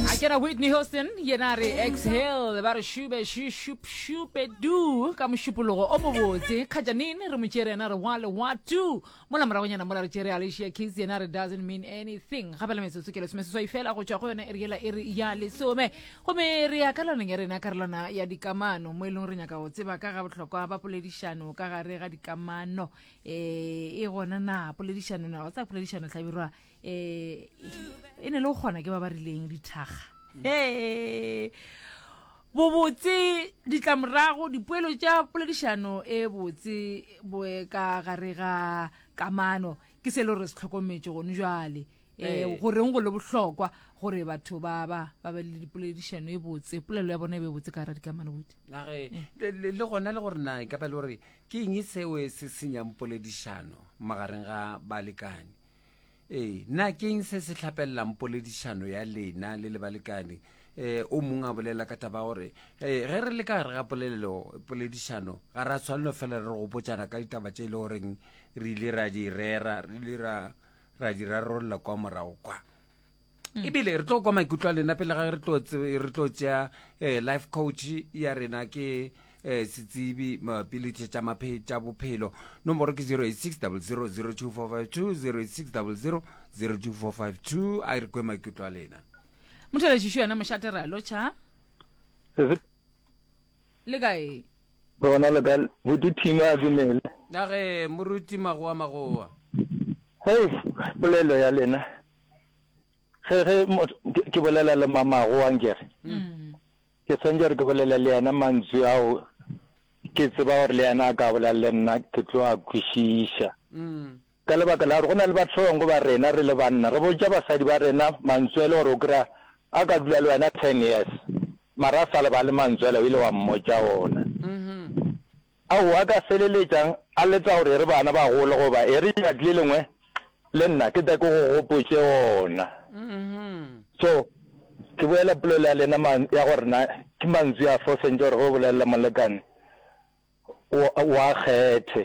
a kena whitney houston yena re exhale ba re shube shupe du ka mošupologo o mobotse kgajanini re mo tšere yena re wa le wa tu mola moragonyana mola re tšere alicia kiss yena re doesn't mean anything gape le metsotso ke lesome seswai fela go tšwa go yona e re yela e re ya lesome gomme re ya ka loneng ya rena karolwana ya dikamano mo e leng re nyaka go tseba ka ga bohlokwa ba poledišano ka gare ga dikamano um e gona na poledišano na o tsa poledišano tlhabirwa eh, e ne le go kgona ke ba ba rileng dithaga ee bobotse ditlamorago dipoelo tša poledišano e botse boe ka gare ga kamano ke se le gore se tlhokometse gone jale um eh, ee. goreng go le bohlokwa gore batho ba ba ba be le dipoledišano e botse polelo ya bone e be e botse ka gara dikamano botse age le gona le gore na e ka ba le gore ke eng e seo e se senyang poledišano magareng ga balekane ee na keng se se tlhapelelang poledišano ya lena le le balekane um o mongwe a bolela ka taba gore um ge re le ka gare ga polelelo poledišano ga ra tshwanelo fela re gopotsana ka ditaba tse e le goreng re ile ra di rera re ile ra ra di rarolola kwa morago kwa e bile re tlo kwa maikutlo a lena pele ga re tlo tšea eh, life coach ya rena ke eh, setsibi mabapi le tšhe tša bophelo nomoro ke 086 0002452 086 a re kwe maikutlo a lena mothelešešo yona mošate re a lotšha le kae bona le kae boduthimo a dumele age moruti magoa magoa hei polelo ya lena ge ge ke bolela le mamago wa nkere mm. ke swantse gore ke bolela le yena mantswe ao ke tseba gore le yena a ka bolela le nna ke tlo a kwešiša mm. ka lebaka la gore go na le batho ba bangwe ba rena re le banna re botša basadi ba rena mantswe le gore o kry-a a ka dula le wena ten years mara a sa leba le mantswela o ile wa mmotsa ona mm-hmm. ao a ka feleletšang a letša gore e re bana ba gole goba e re tšatši le lengwe le nna ke tle ke go gopotše ona. So, ke boela polelo ya lena ya gore na ke mantswi a fo sentše gore ge o bolelela molekane wa kgethe.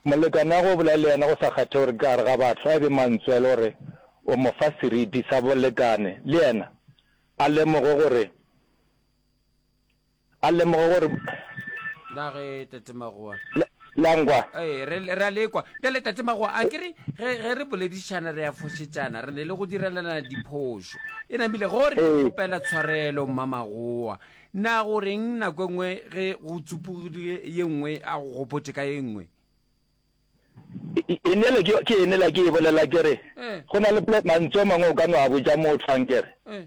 Molekane wa go bolela le yena go sa kgethe gore ke gare ga batho, a e be mantswi a le gore o mo fa seriti sa bolekane le yena a lemoge gore A lemoga gore. Na ge Tate Magoa. Le, langwa. Ee, re, re a lekwa. Bjale Tate Magoa, a kere ge, ge re boledišana re a fošetšana, re ne le go direlana diphošo. E namile gore ke Ee. kgopela tshwarelo, Mma Magoa. Na go reng nako e nngwe ge go tsupogile ye nngwe a go gopotše ka ye nngwe? E, e, e nele ke, ke e nela ke e bolela ke re, Ee. go na le pla, mantsu a mangwe o ka no a botša motho, a nkere. Ee.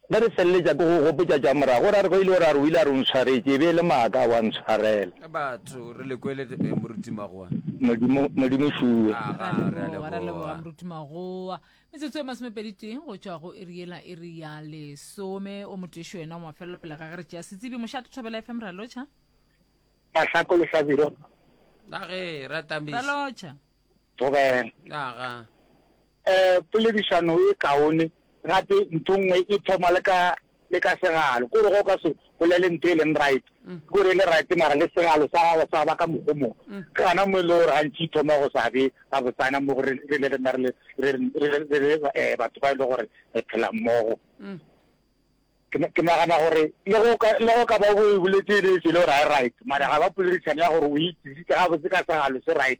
Ge re feleletša ke go gopotša tša morago, o ra re, Go ile go ra re o ile a re o ntshwaretše, e be e le maaka, wa ntshwarela. Batho, re le kwele eh, Moruti Magoa. Modimo, Modimo šuwe. Ra Aga, re a leboga, ra leboga, leboga. Moruti Magoa. Metsotso e masomepedi tee go tšwa go iri yela iri ya lesome. O motešo yena wa mafelelo pele ga ge re tšea setsebi. Mošate Thobela FM, ra lotšha. Masako le Hlabiro, Age, ra Tamiša. Ra lotšha. Thobela. Aga. Poledišano e kaone gape nthongwe e thoma le ka le ka segalo. Kore go ka se bolele ntho e leng right kore e le right mara le segalo sa gago sa ba ka mokgo mo. Ke gana mo e le gore gantši e thoma go sa be gabotsana mo gore re le rena re le batho ba e le gore re phela mmogo. Ke nagana gore le go ka le go ka ba o boletse e le e se e le gore ga e right mara ga ba poledišano ya gore o e tsisitse gabotse ka segalo se right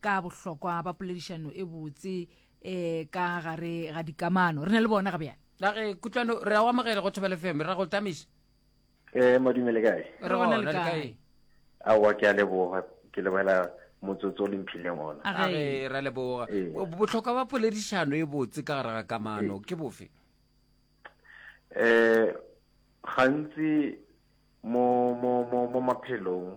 ka bohlokwa ba poledišano e botse um ka gare ga dikamano re na le bona ga bjale la ge kutlwano re a o amogele go thobele fm ra go tamiša um modimo le kae re gona le kae aowa ke a leboga ke lebogela motsotso o le mphileng ona a re ra leboga botlhokwa ba poledišano e botse ka gare ga kamano ke bofe um gantsi mo mo mo mo maphelong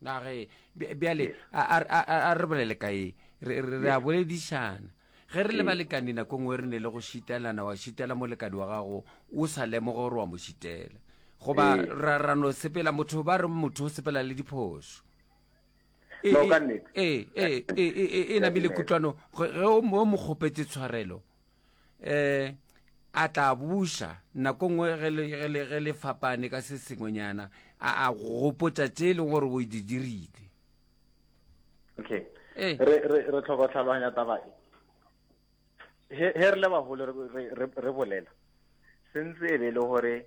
na ge bjale a re bolele ka ye re a boledišana ge re le balekane nako ngwe re ne le go šitelana wa šitela molekane wa gago o sa lemoge gore wa mo šitela goba ra no sepela motho ba re motho o sepela le diphoso e, e, e, e, e namile kutlwano ge o mo kgopetse tshwarelo um a tla buša nako nngwe ge le- ge le- ge le fapane ka se sengwenyana a a go gopotša tše e leng gore o di dirile okay Eh. re re re tlhoka go tlhaloganya taba e he he re le bagolo re- re re- re bolela sentse e be e le gore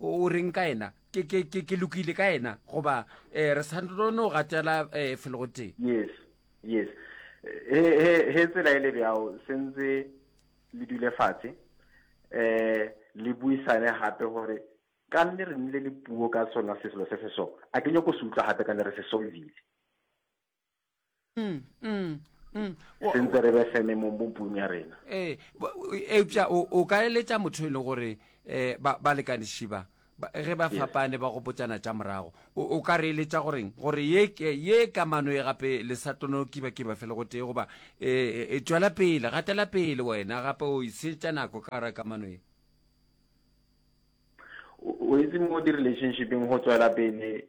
o reng ka ena ke ke ke ke lokile ka ena goba eh re sa no gatela eh felo go teng yes yes he he he tsela e le bjao sentse le dule fatshe eh le buisane gape gore ka nne re nile le puo ka sona seselo se se so a ke nyoko se utlwa gape ka ne re se solvile mm, mm, mm. sentse re be feme mo bopung ya rena ee eupša o ka eletša motho e leng gore um ba lekaniši ba ge ba fapane ba gopotsana tša morago o ka re eletša goreng gore ye kamano e gape le sa tlono kiba kiba fele go tee goba um tšwela pele gatela pele wena gape o isetša nako ka gara kamano ye o itse mo di-relationshipeng go tswela pele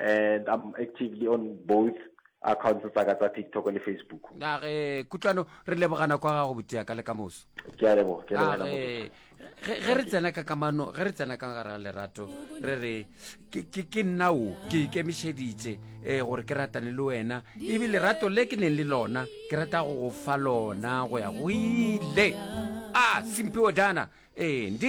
and I'm actively on both accounts tsa ka tsa TikTok le Facebook. Na ge kutlwano re lebogana kwa gago botia ka le ka moso. Ke a leboga, ke a leboga. Ge ge re tsena ka kamano, ge re tsena ka gara lerato, re re ke ke ke nna o ke ikemišeditse eh gore ke ratane le wena. E bi lerato le ke neng le lona, ke rata go go fa lona go ya go ile. Ah, Simphiwe Dana. Eh, ndi